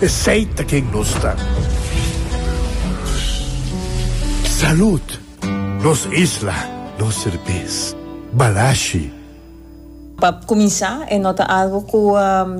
Esey ta ken nos ta. Salud! Nos isla, nos serbes. Balashi. Pa cuminsa, e no ta algo cu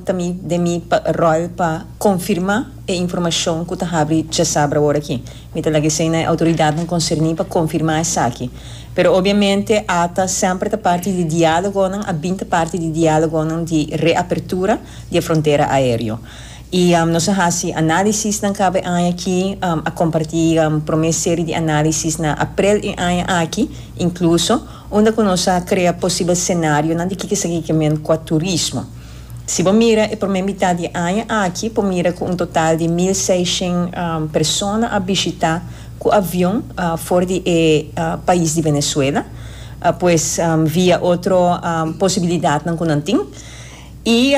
ta mi den mi rol pa confirma e informacion cu ta habri djasabra awor aki. Mi ta laga esey na e autoridadnan concerni pa confirma esaki. Pero obviamente ata semper ta parti di dialogonan, a bin ta parti di dialogonan di reapertura di e frontera aereo. I nos a hasi analisisnan kabe aña aki, a komparti promé seri di analisis na aprel e aña aki inkluso, unda ku nos a krea posibel senarionan di kiko esaki ke men kua turismo. Si bo mira e promé mitat di e aña aki por mira ku un total di mil seishent persona a bishitá ku avion for di e pais di Venezuela, pues via otro posibilidatnan ku nan tin. I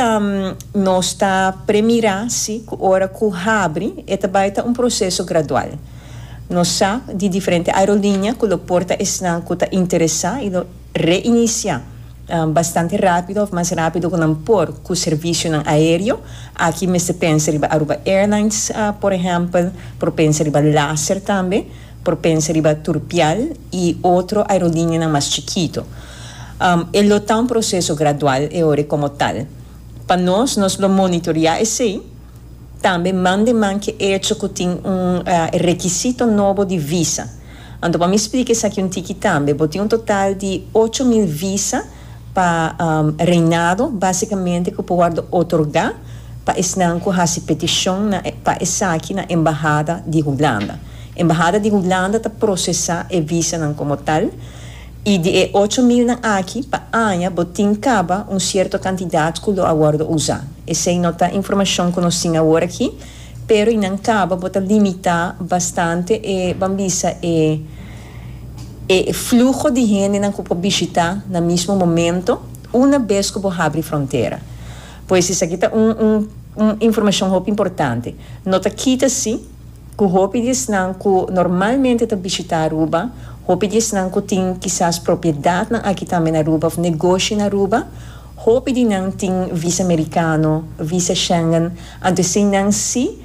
nos ta premira si ku ora ku habri e ta bai ta un proseso gradual. Nos sa di diferente aerolinia ku lo porta esnan ku ta interesá i lo reinisiá bastante rápido òf mas rápido ku nan por ku servisionan aéreo. Aki mester pensa riba Aruba Airlines, por ehèmpel, por pensa riba Laser tambe, por pensa riba Turpial i otro aerolinianan mas chikitu. E lo ta un proseso gradual e ora komo tal. Pa nos, nos lo monitorea esei, tambe man den man ke echo ku tin un rekisito nobo di visa. Anto pa mi splika esaki un tiki tambe, bo tin un total di ocho mil visa pa reinado, basikamente ku por wòrdu otorgá pa esnan ku hasi petishon na pa esaki na embahada di Hulanda. Embahada di Hulanda ta prosesá e visanan komo tal I di e ocho milnan aki, pa aña bo tin kaba un sierto kantidat ku lo a wòrdu usá. Esei no ta informashon ku nos tin awor aki, pero i nan kaba bo ta limitá bastante e, ban bisa, e e fluho di hendenan ku por bishitá na mismo momento una bes ku bo habri frontera. Pues esaki ta un un un informashon hopi importante. No ta kita si. ku hopi di esnan ku normalmente ta bishitá Aruba, hopi di esnan ku tin kisas propiedatnan aki tambe na Aruba òf negoshi na Aruba. Hopi di nan tin visa merikano, visa Schengen, anto esei nan sí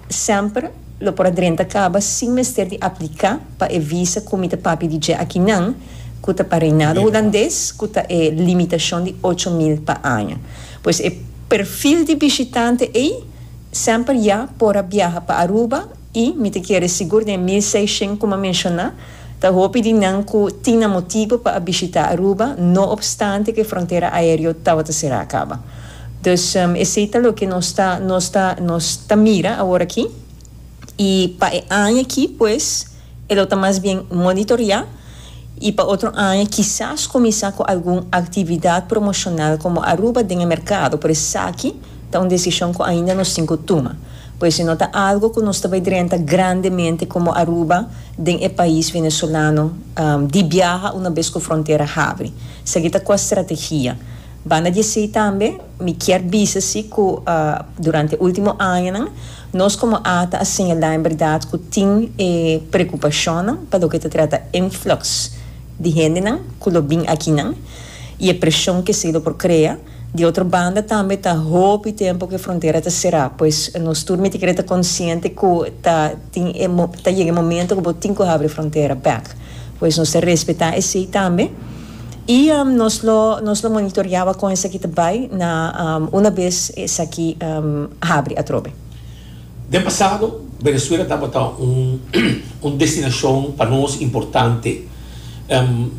semper lo por a drenta kaba sin mester di apliká pa e visa ku mi ta papia di dje aki nan, ku ta pa reinado hulandes, ku ta e limitashon di ocho mil pa aña. Pues e perfil di bishitante ei. Semper ya por a biaha pa Aruba y mi ta kere sigur den mil seishen como a menciona ta hopi di nan cu tin nan motibo pa a bishita Aruba no obstante cu e frontera aereo tabata cera caba. Dus esey ta loke nos ta nos ta nos ta mira aworaki y pa e aña aki pues. E lo ta mas bien monitoriá i pa otro aña kisas kuminsá ku algun aktividat promoshonal komo Aruba den e merkado, por esaki ta un desishon ku ainda nos tin ku tuma. Ku ese no ta algu ku nos ta bai drenta grandemente komo Aruba den e pais venezolano di biaha una bes ku frontera habri. Esaki ta kua strategia. Banda di esei tambe mi kier bisa si ku durante e ultimo añanan nos komo ata a señalá en berdad ku tin e prekupashonnan pa loke ta trata influx di hendenan ku lo bin akinan i e preshon ku esei lo por krea. Di otro banda tambe ta hopi tempu ku e frontera ta será pues nos tur mi ta kere ta konsiente ku ta tin e ta yega e momento ku bo tin ku habri e frontera bèk pues nos ta respetá esei tambe. I nos lo nos lo monitoriaba kon esaki ta bai na una bes esaki habri atrobe. Den pasado, Venezuela tabata un destinashon pa nos importante.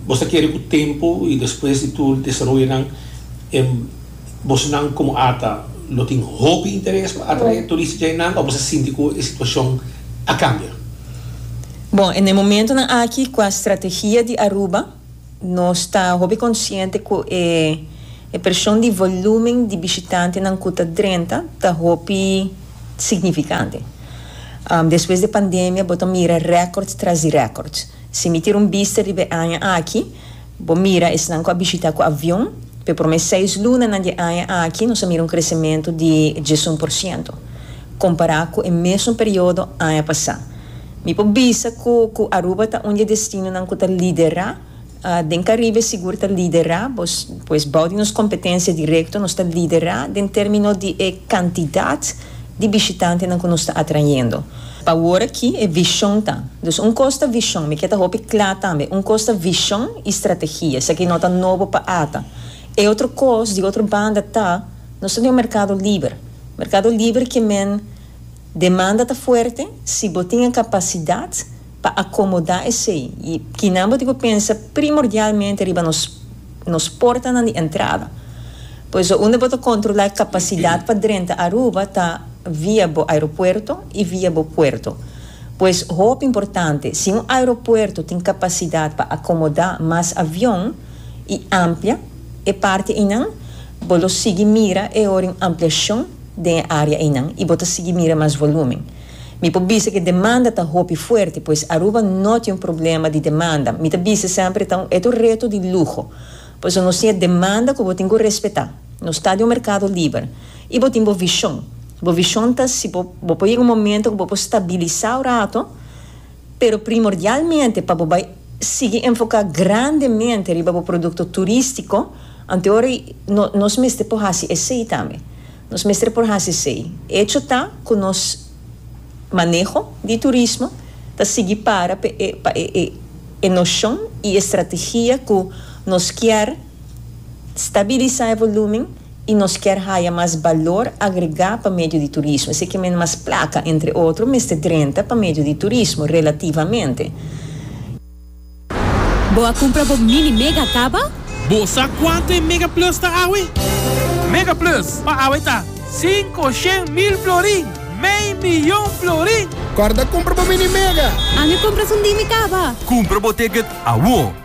Bo sa kere ku tempu i despues di tur desaroyonan bosnan komo Ata lo tin hopi interes pa atrae turista dje nan o bo sa sinti ku e situashon a kambia? Bon, na e momentunan aki ku a strategia di Aruba. Nos ta hopi konsiente ku e e preshon di volúmen di bishitantenan ku ta drenta ta hopi signifikante. Despues di pandemia bo ta mira rèkòrds tras di rèkòrds. Si mi tira un bista riba e aña aki, bo mira esnan ku a bishitá ku avion, pa e promé seis lunanan di e aña aki nos a mira un kresementu di diesun por siento, kompará ku e mesun periodo aña pasá. Mi por bisa cu cu Aruba ta un di e destinonan cu ta lidera. Den Caribe sigur ta lidera, pues bao di nos competencia directo nos ta lidera den termino di e cantidad di bishitantenan cu nos ta atrayendo. Pa awor aki e vision ta. Dus un cos ta vision, mi kier ta hopi cla tambe, un cos ta vision y strategia, esaki no ta nobo pa ata. E otro cos di otro banda ta, nos ta den un mercado liber, mercado liber ke men. Demanda ta fuerte si bo tin e capacidad pa acomoda esey y kinan bo tin cu pensa primordialmente riba nos nos portanan di entrada. Por eso unda bo ta controla e capacidad pa drenta Aruba ta via bo aeropuerto y via bo puerto. Pues hopi importante si un aeropuerto tin capacidad pa acomoda mas avion y amplia e parte eynan, bo lo sigui mira e ora un ampliacion. den e área einan i bo ta sigui mira mas volúmen. Mi por bisa ku e demanda ta hopi fuerte, pues Aruba no tin un problema di demanda. Mi ta bisa semper ta un e ta un reto di luho. Por eso nos tin e demanda ku bo tin ku respetá. Nos ta di un merkado liber i bo tin bo vishon. Bo vishon ta si bo por yega un momento ku bo por stabilisá un rato. Pero primordialmente pa bo bai sigui enfoká grandemente riba bo produkto turístiko, anteora i nos mester por hasi esei tambe. Nos mester por hasi esei. Echo ta ku nos maneho di turismo ta sigui para pa e noshon i e strategia ku nos kier. Stabilisa e volumen y nos kier haya mas balor agrega pa medio di turismo. Esei ke mende mas placa, entre otro, mester drenta pa medio di turismo, relativamente. Bo a cumpra bo Mini Mega caba? Bo sa cuanto e Mega Plus ta awe? Mega Plus pa awe ta, Cinco shen mil florin, mei miyon florin! Corda cumpra bo Mini Mega! Ami cumpra sundimi caba! Cumpra bo ticket awor!